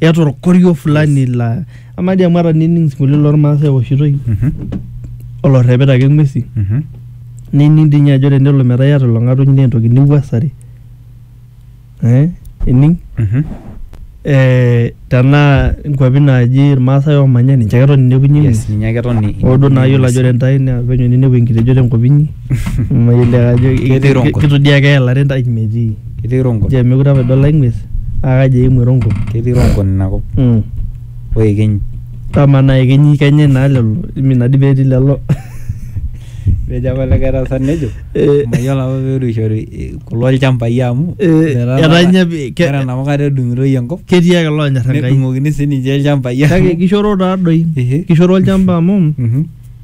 eeta orkorio fulani la ama dii amu ata nining sinkolio lormaasai eoshitoi Mhm, olorrepita ake ng'uesi mhm. nining dii ninye ajo tenelo metaa iyata ilo ng'atuny naa entoki niwuasare eh, ining Mhm. eh, tenaa nkuapi naaji irmaasai oomanya ninche ake etoni inepunye Yes, ng'uesi ninye ake etoni oo duo naa yiolo ajo ore intae naa penyo ninepu enkilejo tenkop inyi mayiolo ajo Ketii rongo. kitodiaa keelare intae metii Ketii rongo. Ore mekure apa idol ai ng'ues naa kaji eimu erongo? Ketii rongo nena kop. Mm. O ekenyi. Amaa naa ekenyi kenyae naa lelo imi naa dii pee etii lelo. Etejo apa likae tasat nejo Eh. mayiolo apa peetuishore kulo ilchambai amu Eh, metaa etaa ninye pi- ke- ore enapa kata edung'itoi enkop Ketii ake loonyor Enkai. nedung'okini sininche ilchambai Kake amu kishoro taadoi. Ehe. Kishoro olchamba amu Mhm.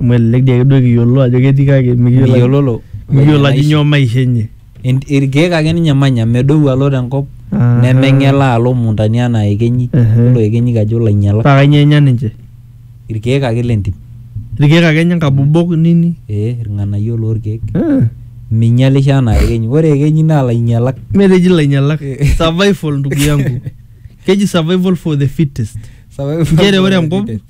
Amu elelek dii ake duo kiyiolo ajo ketii kake mikiyiolo miyiololo mikiyiolo ajo nyoo maisha enye. En- irkeek ake ninye emanya medou alo tenkop Aha. nemeng'elaa alo imuntani anaa ekenyi Ehe. yiolo ekenyi kajo ilainyialak Paa kanyoo enya ninche? irkeek ake lentim Irkeek ake enya nkabobok nini? ee irng'anayio lorkeek Ah. minyialisho anaa ekenyi ore ekenyi naa ilainyialak Mee teji ilainyialak. Survival ndugu yangu. Keji survival for the fittest. Sababu- Nchere ore enkop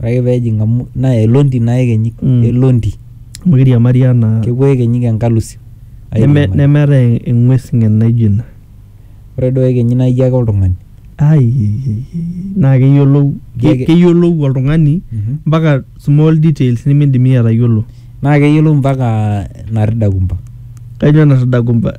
Ore ake pee ejing amu naa elondi naa ekenyik, Mm. elondi. amu keiriamari anaa Kepuo ekenyik enkalusi. neme- airiamari. nemeetae eng'ues ng'en naijo ina Ore duo ekenyik naa ijo ake oltung'ani. Ai, ei, ei, ei, naa keyiolou Ijo ake- keyiolou oltung'ani Mhm. mpaka small details nimidim iyie atayiolo Naa keyiolou mpaka narridakumba. kainyoo natadakumba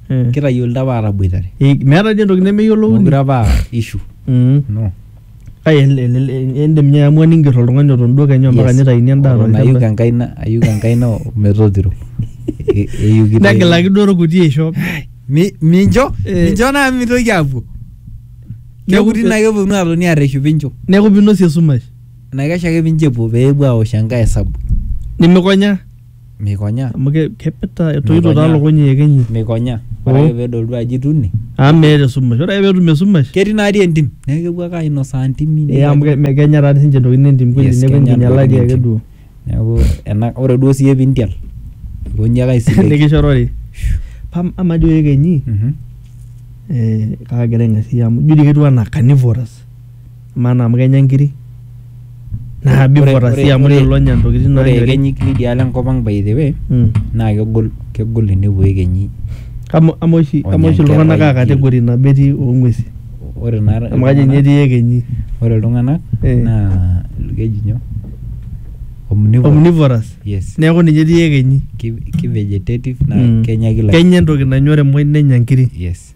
Mm. kitayiolito apa aataboitare Eh, meeta dii entoki nemeyiolouni mokure apa aa ishu Mm. no Kake el- el- el- indim ninye aamua ninger oltung'ani oton duo kenya mpaka Yes. nitaini endaa Ore nayuk tolchamba enkaina ayuk enkaina o- metotiro E- eyukito- negilaki duo orkuti aisho Mi- mincho Eh. mincho naa mitoki apuo Neeku- kekuti naa keponu atoni arreshu pincho neeku pinosie esumash enaikash ake pincho epuo peepuo aosh enkae esabu nimikonya Meikonya. Amu ke kepita etoito taa lukuny iyekenyi. Meikonya. Ore ake pedol duo ajo ituni. Amu meeta esumash. Ore ake petum esumash. Ketii naadi entim. Neeku kepuo ake ainosaa ntimi. Ee amu kenya taa sinche ntokitin entim kweli. Yes kenya ntokitin entim. Neeku enkinyalaki ake duo. Neeku ena ore duo siye pintial aikonji ake aisiligi. Nikishorori. Amaa dii iyekenyi kagira aing'asia amu ijo dii ketiu enaa carnivorous. maana amu kenya inkiri naa before sii amu lelo onya intokitin Ore naanyori. ekenyik lidialo enkop ang by the way Mm. naa kegol kegol enepuo ekenyi Kama ama oshi Onya ama oshi iltung'anak aa nkerai category nabo etii oo ng'uesi ore naa amu kajo ninye etii ekenyi. ore iltung'anak Eh. naa keji nyoo omnivorous Omnivorous. yes Neeku ninye etii ekenyi. ki, ki vegetative naa Mm. kenya kila kenya entoki nanyori muj nenya nkiri. yes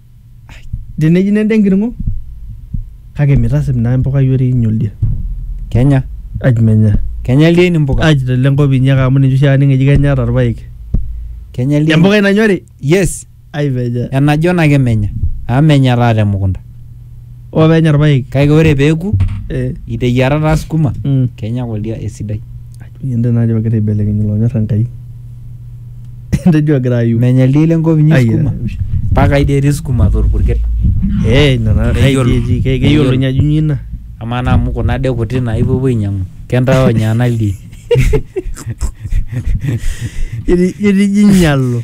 teneji nende enkiring'o kake mitasip naa empukai oreinyi oldia Kenya. aj menya Kenya ildieni mpuka. aj tele nkop inyi ake amu ninche oshi aning eji kenya ata irpaek Kenya ildieni. empukai nanyori Yes. ai menya Enajon ake menya. Amu menya taa temukunta. oo penya irpaek Kake ore peeku eh, iteyiara taa sukuma mm. kenya ake oldia esidai. Ende naa ajo egira aibelekeny ilonyor Enkai. Ende ejo egira ayu. Menya ildien lenkop inyi sukuma. Mpaka ai dii etii sukuma atua orpurkel. Ee ina naa ai dii etii. Keyiolo ninye ajo inyoo ina. Amaa naa amu kuna dee kuti naa ipuopuo ainyiang'u. Kentaa onya ena ildien. Ijo inyalo.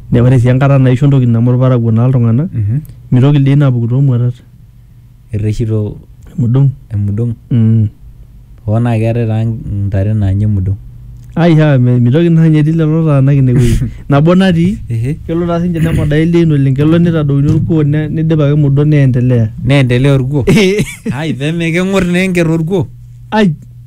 Ne- ore sii enkata naisho entoki neme olparakuo naa iltung'anak Mhm. mitoki ildiein aapuku toomuatat Irreshito emudung emudong. mm. Hoo naa keetae taa ntare naanya emudong. ai haa me- mitoki naa ninye etii lelo taanak ine wueji nabo natii Ehe. kelo taa sinche nemodaa ildiein oleng kelo nitadouni orkuo ne- nidip ake emudong neendelea Neendelea orkuo. Ai peme keng'or naa enker orkuo. ai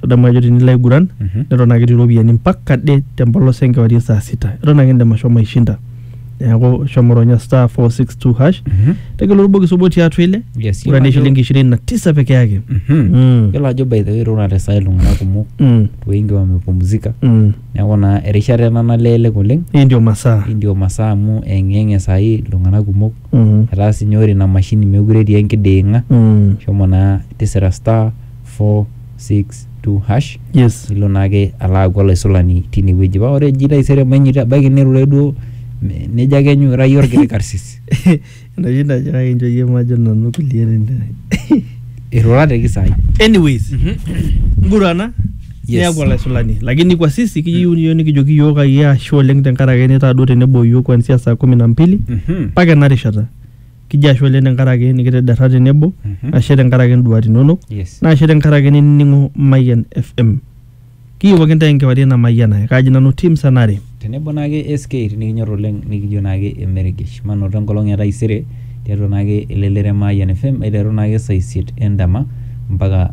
tadamu ajo tinilo aiguran Mhm. neton ake etii iropiyiani mpaka de tempolos enkewarie saa sita eton ake indim ashomo aishinda neeku shomo ronya star 462 hash Mhm. tegelu orbokis obo tiatua ile Yes, ura yiolo ne ajo- shilingi ishirini na tisa peke yake Mhm. Mm. yiolo ajo by the way irura te saa iltung'anak kumok Mm, wengi wamepumzika mm. neeku naa erishata ena nalelek oleng hii ndio masaa hii ndio masaa amu eng'eng'e saai iltung'anak kumok Mm, etaa sinye ore ina mashini meekure etii enkiding'a mm. shomo naa tisira star 462#. Yes. nilo naake alo aaku olaisulani tine wueji paa ore eji taisere mainyito ebaiki nirure duo me- nejo ake enyu ira iyie orkiti karsis Enoshi najo kake inchoo iyie majo nanu kulie nene. irura te kisai Anyways, ngurana Yes. niaku olaisulani lakini kwa sisi kiyieu niyo nikijoki iyiook ayie ashe oleng tenkaraki nitaa duo tenebo iyiook kuanzia saa kumi na mbili Mhm. mpaka ena rishata kijo ashe oleng tenkaraki nikitederra tenebo Mhm. ashe tenkaraki induat inonok Yes. naa ashe tenkaraki ninining'o Mayian FM kiyewuaki intae enkewarie namayianare kaji nanu tim sanare tenebo naake SK nikinyor oleng nikijo naake emeregesh manoto enkolong e taisere tiatua naake elelero e Mayian FM aiteru naake saa isiet endama mpaka